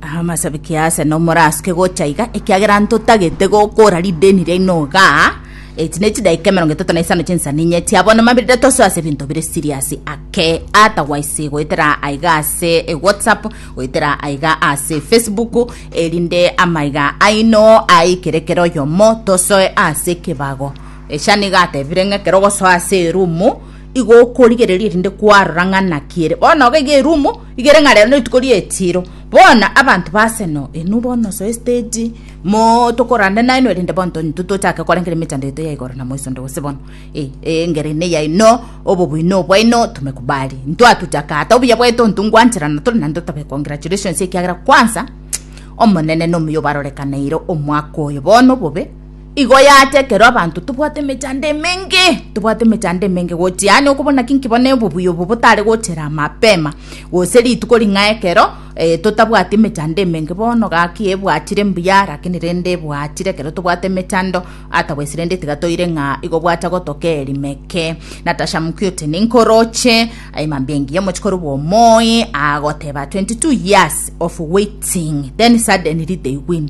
Amasabiki ase nomorasuke gocha iga, ekiagera ntotagete gokora rideni riaino igaa, eti ne chidaika emerongo etato na isano chinsa ninye chia bono mabirire tosoe ase ebinto bire serious ake, otherwise goetera aiga ase e whatsapp, goetera aiga ase facebook, erinde amaiga aino aikere kera oyomo tosoe ase ekebago. Echa nigo atebire ng'a ekero ogosoa ase erumu, igo okorigereria erinde kwarora ng'a naki ere bono iga erumu. Igere ng'a rero netuko ri'echiiro, bono abanto ba Arsenal inwe bono soe stage mo tokorande nainwe rende bono tonto tochake kore kere emechando yaito ya igoro na moisonto gose bono eh eh engeri ene yaino obobuino obwaino tumekubali ntwatuchaka ata obuya bwaito ntungwancherana tore naende tobe congratulations ekiagera kwanza omonene nomuya obarorekaneire omwaka oyo bono obobe Igo yacha ekero abanto tobwate emechando emenge, tobwate emechando emenge gochia yaani okobo naki nki bono obobuya obo botare gochera mapema gose rituko ring'ao ekero eh totabwati emechando emenge bono gaki ebwachire mbuya lakini rende ebwachire ekero tobwate emechando ata gose rende tiga toire ng'a igo gwacha gotoka erimeke. Natasha Mukioti ninkoroche eh, mambia engiya omochie korwa omoe agoteba 22 years of waiting then suddenly they win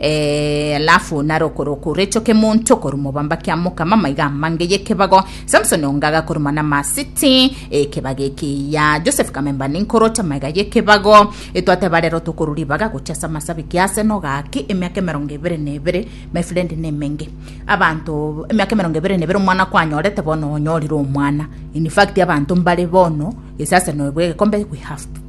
Ee, alafu narokoroko recho kemonto korwa mobamba kia mokama maiga amange yekebago Samson ongaga korwa mana masiti ekebaga ekiya Joseph kamemba ninkorota maiga yekebago etwateba rero tokorwa ribaga gocha ase amasabi kiase nogaki emiaka emerongo ebere na ebere my friend nemenge abanto emiaka emerongo ebere na ebere omwana kwanyorete bono onyorire omwana in fact abanto mbare bono esase noe bwegekombe we have to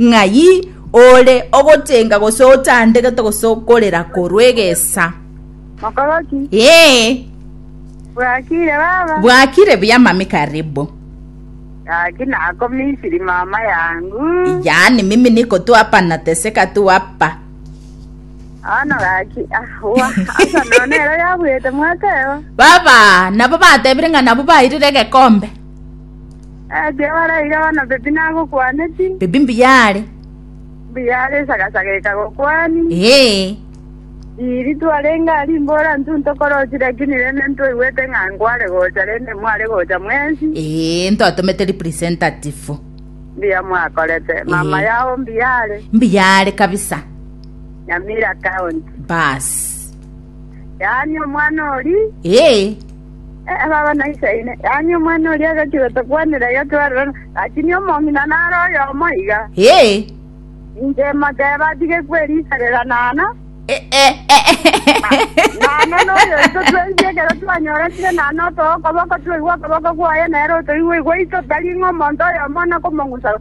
Ng'ai ore ogotenga gose otandegete gose okorera korwa egesa? Mokoroki? Ee. Bwakire baba? Bwakire buya mami karibu. Gaki nako Misiri mama yangu. Yaani mimi niko tu hapa nateseka tu hapa. Ano gaki ah, wa asa none ero yabwete mwateba. Baba, nabo batebire ng'a nabo bairire egekombe. Jehova araire bono mbibi nagokwaneti. Mbibi mbuya are. Mbuya are esagasaga ekagokwani. Ee. Iri twarenge a rimbora ntwe ntokorochi lakini rende ntwaigwete ng'a nkware gocha rende mware gocha mwensi. Ee, ntotomete representative. Mbuya mwakorete. Mama Ee. yao mbuya are. Mbuya are kabisa. Nyamira County. Bas. Yaani omwana ori Ee. Baba na Inse aino, yaani omwana oria agachire otokwanera iga twerorana, lakini omong'ina nare oyomo iga. Ee. Inche moteebe atige kweriiserera nana, nana noyo oito twensi ekero twanyoranire nana otoe okoboko twaigwe okoboko kwaye, nere otoigwe igwe aito, tari ng'a omonto oyomo one komong'usa.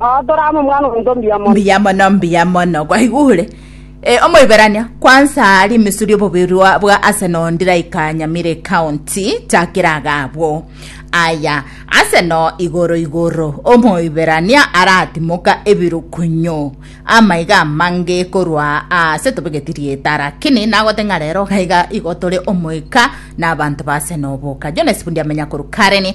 Adoramu omwana omonto mbuya mono. mbuya mono mbuya mono gwaigure Eh, omoiberania kwansa rimisuri obobirwa bwa aseno ndiraika nyamire county takira agabwo aya aseno igoro igoro omoiberania aratimoka ebirukunyo amaiga amange korwa ase tobegeti rieta lakini nagote ng'a rero gaiga igotore omoika na abanto ba aseno boka jones bundi amenya koru kareni